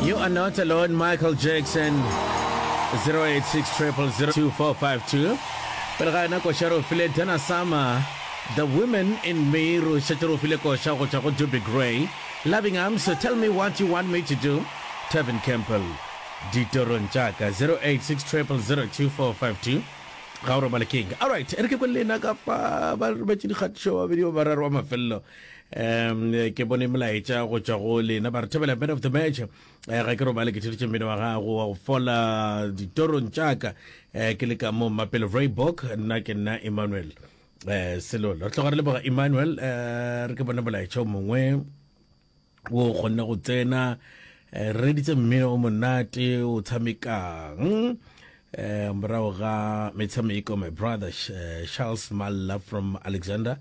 You are not alone, Michael Jackson. 0860002452. Pele ga yona koša ro file Dana Summer. The Women in Me ro šetše ro file koša go tšwa go Duby Gray. Loving Arms, Tell Me What You Want Me to Do. Tevin Campbell. Ditorong tša ka 0860002452. Ga o robale keng. All right, e re ke kwele ena ka fa ba robetše dikgatišo ba babedi ba bararo wa mafelelo. um ke bone melaetša go tšwa go lena ba re thebela man of the match eh, ga ke robale ke theditše mmino wa gago wa go fola ditorong tšaka eh, ke le ka mo mapelo vraybook nna ke nna emmanuel um selolo re tloga re leboga emmanuel um re ke bone molaetša o mongwe wo o kgonne go tsena eh, re reditse mmino o monate o tshamekang eh, morago ga metshameko my brother eh, charles malla from alexander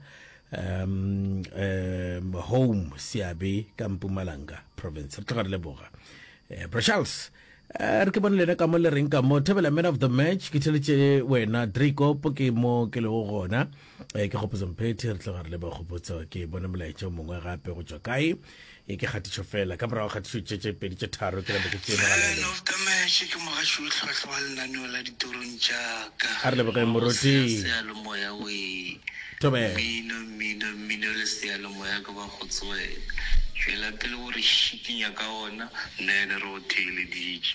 um, um, home seabe ka mpumalanga province re tloga re leboga eh, bro charles Eh, re ke bone lena ka mo le reng ka mo thebela man of the match ke theletše wena dracopo ke mo ke lego gona e ke kgopotso mphethi re tla ba re le ba kgopotso ke bone molaetša o mongwe gape go tswa kae e ke kgatišo fela ka morago kgatišo tše tše pedi tše tharo ke lebe ke tseegalele ke mogaši o tlhwatlhwa wa lenaneo la ditorong jaaka a re lebe kae moroti sealomoya we mmino mmino mmino le sealomoya ke ba go tswela tšwela pele o re šikinya ka ona nna ene re o theeleditše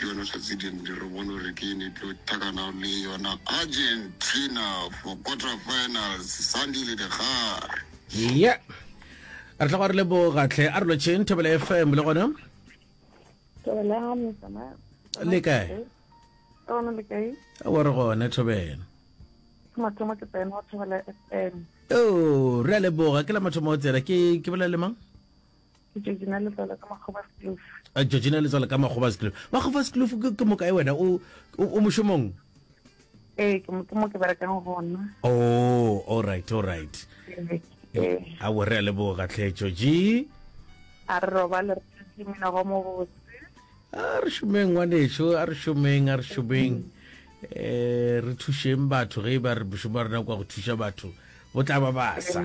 Yona hlatse dindi re bone gore ke ene tlo takana le yona Argentina for quarter finals Sunday le dikgare. Ye. Re tla go re le bo gatlhe a re lo tšheng thobela FM le gona. Thobela me sama. Le kae? Tona le kae? Wa re gone thobela. Mathomo ke pena wa thobela FM. Oh, re a leboga ke la mathomo o tsela ke ke bolela le mang? ke Georgina Letswalo ka Makgobaskloof. Uh, Georgina Letswalo ka Makgobaskloof. Makgobaskloof ke, ke mokae wena o, o, o mošomong? Ee, ke mo ke mo ke berekang gona. Oh, all right, all right. Ee, ee. A bo re a leboga tlhe Georgie. A re robale re tletse mina go mo botse. A re šomeng ngwaneso, a re šomeng, a re šomeng. Eh, re thušeng batho ge e ba re bošomo ba rena kwa go thuša batho. Bo tla ba basa.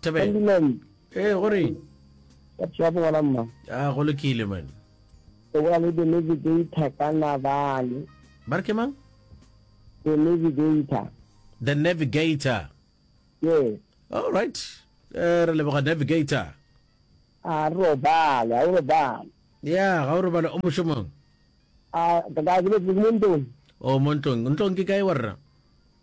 tebeng ee gore ya bona mma a ah, go lokile man o bua le the navigator ka nabale ba re ke mang the navigator the navigator yes all right eh, re leboga navigator a robale a robale ya ga o robale o mošomong a ka ka ke mo ntlong o mo ntlong ntlong ke kae wa rra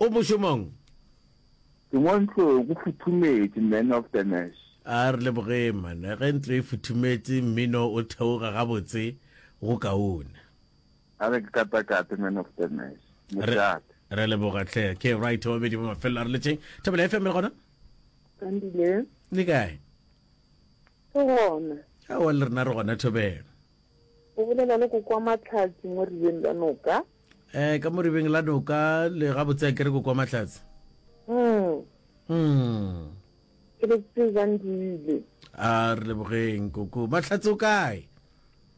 O mošomong? Ke mo ntlong, go futhumetše, man of the mash. A re lebogeng, man. Ge ntlo e futhumetše, mmino o theoga gabotse go kaone. A re ke katakate, man of the mash. Mošate. Re leboga hle. Ke right wa bedi ba mafelelo a re letšeng. Thapelo FM le gona? Andile. Le kae? Ke gona. Aowa le rena re gona Thobelo. O bolela le Koko wa Matlhatši mo Ribeng la Noka. eh ka moribeng la noka le ga botse ke re ko kwa mahlatse mm mm ke re tse jang dile a re lebogeng koko mahlatse o kae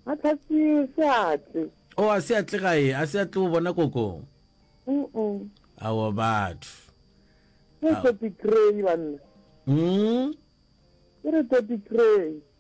mahlatse se atle o a se atle gae a se atle o bona koko mm awa batho ke topic cray banna mm ke re topic cray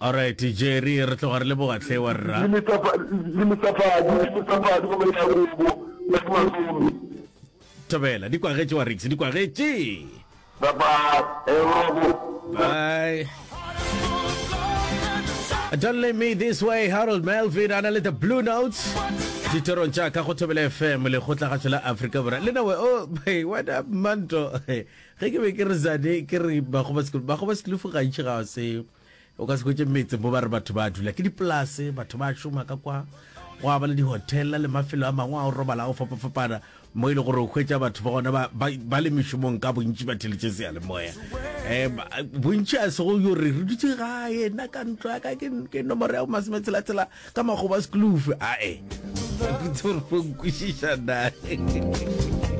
Alright Jerry re tloga re leboga hle wa rra. Le metsapa le metsapadi le metsapadi go beta robo ya ke malome. Thobela di kwagetše wa Rix di kwagetše. Bye bye e robo. Bye. Don't leave me this way Harold Melvin ana le the blue notes ditorong tša ka go thobela fm lekgotlagašo la afrika borwa le nawe o oh, hey, what up manto ge ke be ke re zane ke re bagoba sekolo bagoba selufu gantši ga se O ka se hwetše metse mo ba re batho ba dula ke dipolase, batho ba šoma ka kwa, gwa ba le dihotela le mafelo a mangwe a o robala a o fapafapana mo e le gore o hwetša batho ba gona ba, ba, ba le mešomong ka bontši ba theletše seyalemoya um bontši a sego yo re re dutše gae nna ka ntlo ya ka ke, ke nomoro ya bomasemetshela-tshela ka makgoba sekulufe ae ke tsore fo nkwešiša nae